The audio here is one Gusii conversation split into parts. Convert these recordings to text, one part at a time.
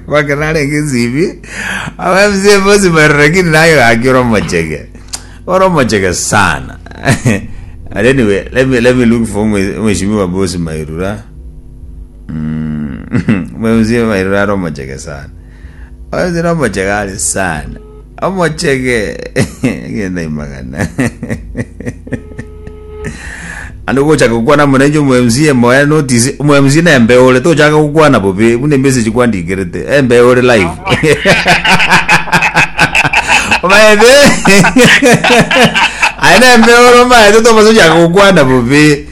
Bake narenge nsibi abamzee bosi bare lakini naye gaki ore omochege ore omochege sana and anyway let me, let me look for mwe- mheshimiwa bosi mairura Mm. mheshimiwa mairura are omochege sana abamzee ore omochege are sana omochege egenda imagana ande gochaka gokwana morenje omo MCA moya notice omo MCA na embe ore tochaka gokwana bobe buna message kwandikerete embe ore live omaete aye na embe ore omaete tomaze ochaka gokwana bobe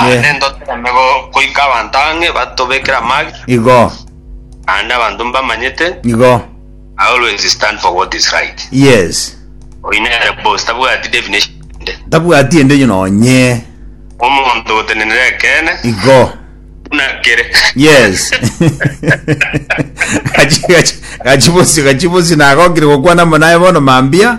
Naende ntoteeme goika abanto ang'e batobekere amage, Igo, naende abanto mbamanyete igo. I always stand for what is right. Yes. Oyio nere boss tabwati definition ende. Tabwati ende yo nonye. Omonto gotenenera ekeene Igo. buna kere. Yes. Gachi gachi gachi bosio gachi bosio nagokire gokwana amo naye bono mambia.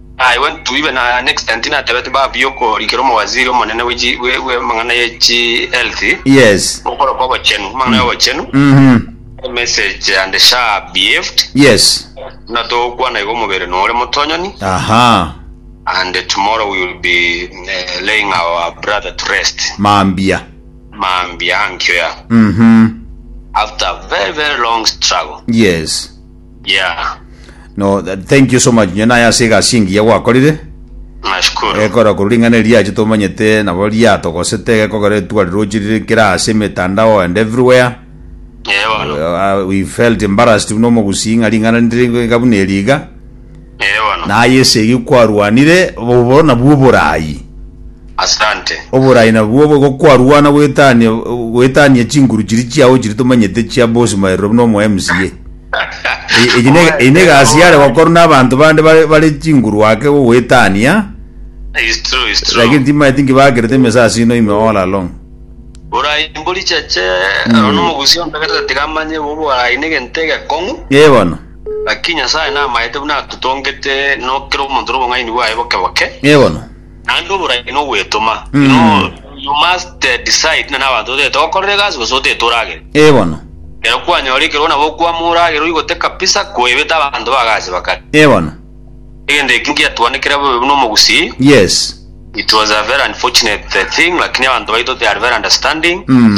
Naye Ntwaibe na next time tinatebeti baba buya okorikera omowaziri omonene bwe chi- bwe- bwe amang'ana ye chi health Yes. okoro kwa obochenu amang'ana ya obochenu Mhm. message and sha behaved Yes. na togokwana igo omobere nore motonyoni Aha. and tomorrow we will be eh, laying our brother to rest Mambia. mambia ankio ya Mhm. after a very very long struggle Yes. Yeah. No, th- thank you so much. Nyo naye ase egasi engiya gwakorire. Nashukuru. Ekora korwa ring'ana eriache tomanyete nabo riatogosete gekogera etuari rochi riri kera ase emetandao and everywhere. Yeah, bono. Uh, we felt embarrassed buna omogusi ng'a ring'ana ndiri iga buna eri iga. Na aye esegi kwarwanire bobe nabwo oboraai. Oboraai nabwo obo igo kwarwana goetania goetania chinguru chiria chiao chiria tomanyete chia bosima eroro buna omo MCA. Eye ne eye ne egasi yare gokorwa na abanto bande bare bare chinguru ake gogoetania. Lakini timaeti nki bakerete emesa ase ino ime all along. Borai mborichache nomogusi ontagete tiga amanye boborai negento egekong'u. Ee bono. Gaki Nyasae namaete buna atotongete, no kera omonto nobong'aini bwaye boke boke, Ee bono. naende oborai nogwetoma. You Mm. know, you must eh, decide na nabanto otete gokorera egasi gose otete oragere. Ee bono. Ekero kwanyora ekerogo nabo okwama oragere oigote kabisa koebete abanto ba gasi bakare. Ee bono. Egento eki ngiatwanekire bobe buna omogusii. Yes. It was a very unfortunate eh, thing, lakini abanto baito they are very understanding. Mm.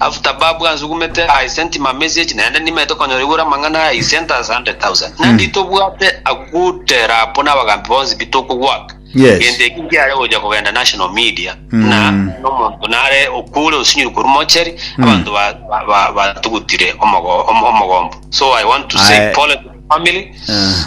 After babu ansugumete I sent him a message naende nimaete konyora igoro amang'ana aya he sent us 100,000 nandi tobwate a good rapo nabagambi bonsi pi tokogwaka Yes. gento eki nkiare gocha kogenda national media na nomonto nare okure osinyuru korwa mochari abanto ba- ba- ba- batugutire omogo- om- omogombo so I want to say Aye. pole to the family Ah.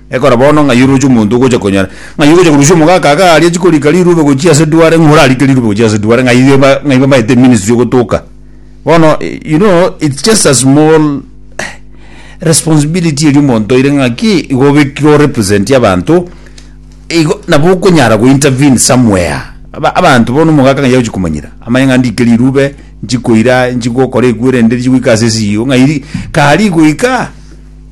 Ekora bono ng'ai oroche omonto ogocha konyara? Ng'ai ogocha korusia omogaka aka aria chikorika rirube gochia ase duare ng'a orarike rirube gochia ase duare? Ng'ai eba ng'ai bamaete ministry ogotoka? Bono you know it's just a small responsibility eria omonto oire ng'aki igo obekire o represent abanto igo nabo okonyara go intervene somewhere. Aba abanto bono omogaka ng'ai agochi komanyera? Amanye ng'a ndike rirube nchikoira nchigokora ekuo erende richigoika ase esio ng'ai ri kari goika?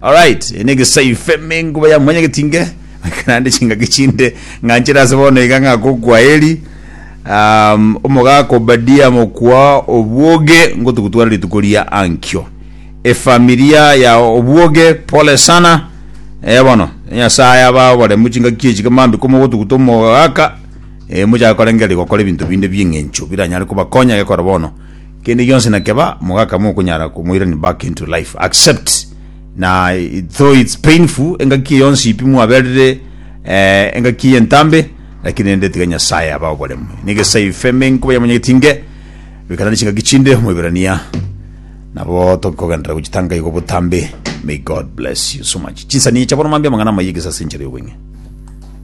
Alright eye negesaife menguba ya mwanya getinge ekana ande chingaki chinde ng'anchere ase bono iga ng'ako kwaheri um, omogaka obadia mokwa obwoge ngotugutwara rituko ria ankio efamilia ya obwoge pole sana eh bono nyasaye aba oboremu chingaki echi kamambi komogotuguta omogaka eh mochaka korengeria gokora ebinto binde bieng'encho biranyare kobakonya gekora bono Kende gionsi na keba mogaka mokonyara komoirani back into life accept na though it's painful engaki yonsi pi mwaberire eh, engaki eye entambe lakini rende tiga Nyasaye aba oboremu negesai feme nkoba yamonyegeti nge bikana ne chingaki chinde omoiberania nabo tokikogendera gochitanga igo botambe may God bless you so much chinsani echa bono mambia amang'ana amaya egesasi enchera y'obweng'e